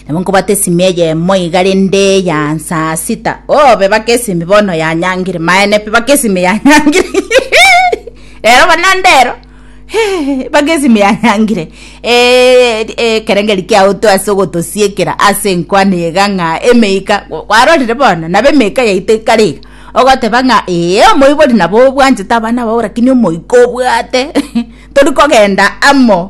nabo nkobata esimi eyemo iga rende ya nsaa sita oh bebaka esimi bono yanyangire maene pi baka esimi yanyangire rero bana ndero baka esimi yanyangire Eh, eh, ekerengeri kiaoto ase ogotosiekera ase enkwana iga ng'a emeika Kwa- kwarorire bono nabo emeika yaito ekare iga ogoteba ng'a ee omoibori nabo obwanchete abana bao lakini omoika obwate tori kogenda amo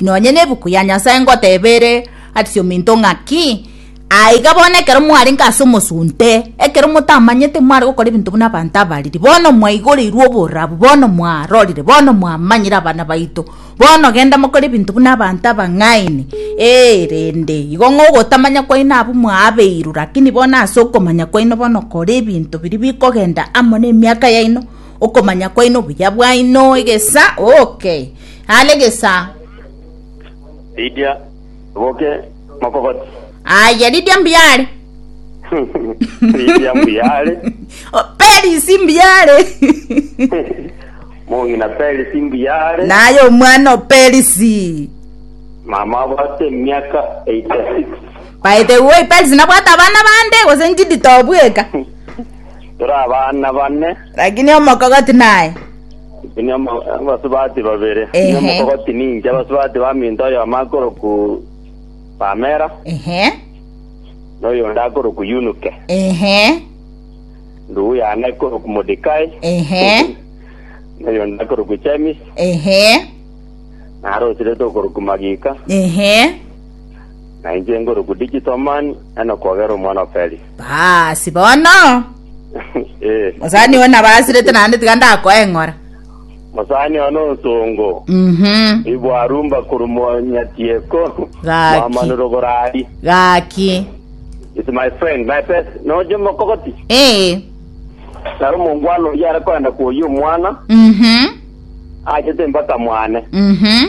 Nonya nebuku ya Nyasae ngoteeba ere ase ominto ng'aki, Aiga bono ekero mwarenge ase omosunte, ekero motamanyete mware gokora ebinto buna abanto abariri, bono mwaigoreirwe oborabu, bono mwarorire, bono mwamanyire abana baito, bono genda mokore ebinto buna abanto abang'aini, ee, rende igo ng'a ogotamanya kwaino abwo mwaabeirwe, rakini bono ase okomanya kwaino bono kora ebinto biri bikogenda amo nemiaka yaino, okomanya kwaino obuya bwaino egesa, okay. Are gesaa. Ridia boke mokogoti. Aye ridia mbiare. Ridia mbiare. Perisi mbiare. Mong'ina Perisi mbiare. Naye omwana o Perisi. Mama abwate emiaka 86. Baete woi Perisi nabwate abana bande gose njidi tobweka. Tore abana bane. Lakini omokogoti naye. Inwe abasubati babere, inwe mokogoti ninche, abasubati baminto, oyomo akorokwa Pamela, Ehe, na oyonde akorokwa Yunuke. ehe, Ndugu yane ekorokwa Mordekai, ehe, na oyonde akorokwa James, ehe, nare osirete okorokwa Magika, ehe. na inche nkorokwa Digital Man, Enoch Ogero omwana o Felix. Basi bono Eh, mosani oyo nabo asirete naende tiga ndakoe ng'ora mosani one onsongo. Mhm. Ibwarumba kurumonyatieko. Gaki. Mwamanuro gorari. gaki It's my friend, my best. Noje mokogoti. ee Naro mongwana oyo are koenda kuoyia omwana. mhm Aachete mpaka mwane. Mhm.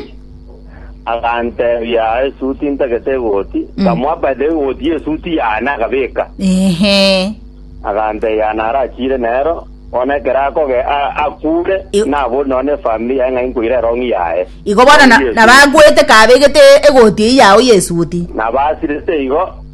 Agantebia, esuti ntagete egoti. Nkamoa by the way egoti y'esuti yane akabeka. Ehe. Agantebia narachire nero, bono ekero akoge a- akure, Yo- nabori nonya ne efamili yaye ng'a inkoira erong'i yaye. Igo bono na- Yesu. nabagwete kabegete egoti eyio yao y'esuti. Nabasirete igo,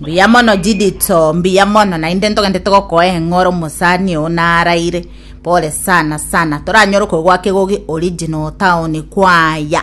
Mbuya mono Judito, mbuya mono, naende ntogende togokoe eng'o ore omosani oo naraire. Pole sana sana, toranyore koigwa kegogi original town kwaya.